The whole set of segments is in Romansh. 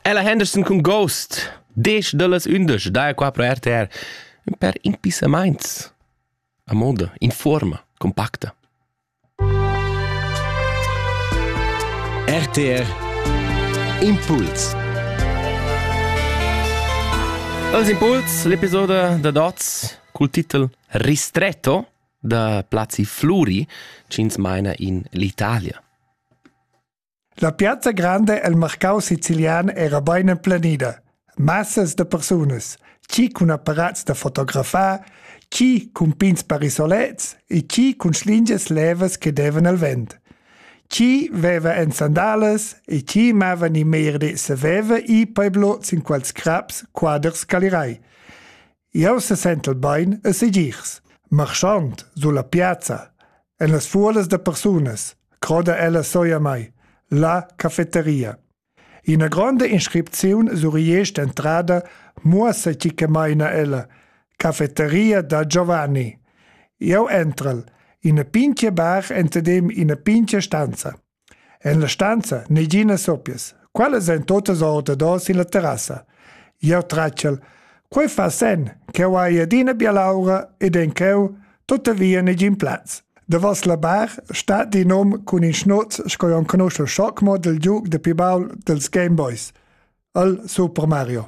Ella Henderson cun Ghost, desch dallas undisch, da qua pro RTR, ün per impissamaints. A moda, in forma, compacta. RTR Impuls Els Impuls, l'episodio da Dots cul titel Ristretto da Plazi Fluri, cins meina in l'Italia. La piazza granda el marcau sicilian era bein emplenida. Massas da persunas, chi cun apparats da fotografar, chi cun pins parisolets e chi cun schlingias levas che devan al vent. Chi veva en sandalas e chi mava ni merdi saveva i peblo sin quels craps quaders calirai. Jau sesentel bain e segirs, marschand sur la piazza, en las fuolas da persunas, croda ella soi a mai, la cafeteria. Ina gronda inscripziun sur entrada muossa tgi che maina ella, cafeteria da Giovanni. Jau entrel, ina pintga bar entadem ina pintga stanza. En la stanza neginas soppias. Quellas ein totas ordador sin la terrassa. Jeu tratschel. Quei fa sen ch'jeu hai adina bialaura ed en cheu tuttavia negin plaz. Davos la bar stat in hom cun in schnuz sco enconuschel schoc mo dil giug de pi baul dils Game Boys, el Super Mario.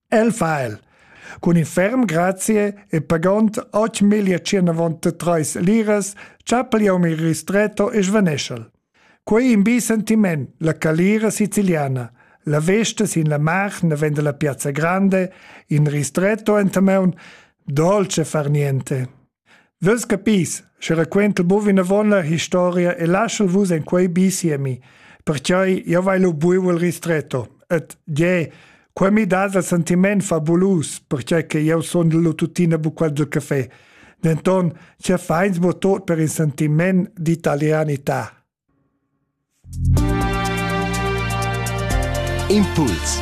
El fa el. Cun in ferm grazie e pagond 8.193 liras chapigliam il ristretto e svaneschel. Quei in bi sentiment, la calira siciliana. La vesta sin la mar ne vende la piazza grande, in ristretto enta meun, dolce far niente. Vus capis, sche raquentel buc vinavon la historia e laschel vus en quei bi siemi, pertgei jeu vai lu buc el ristretto. Ed gie, quei mi dat il sentiment fabulus, pertgei che jeu sundel lu tuttina buc quasi caffè. Denton, sia feins mo tot per il sentiment d'italianità. Impuls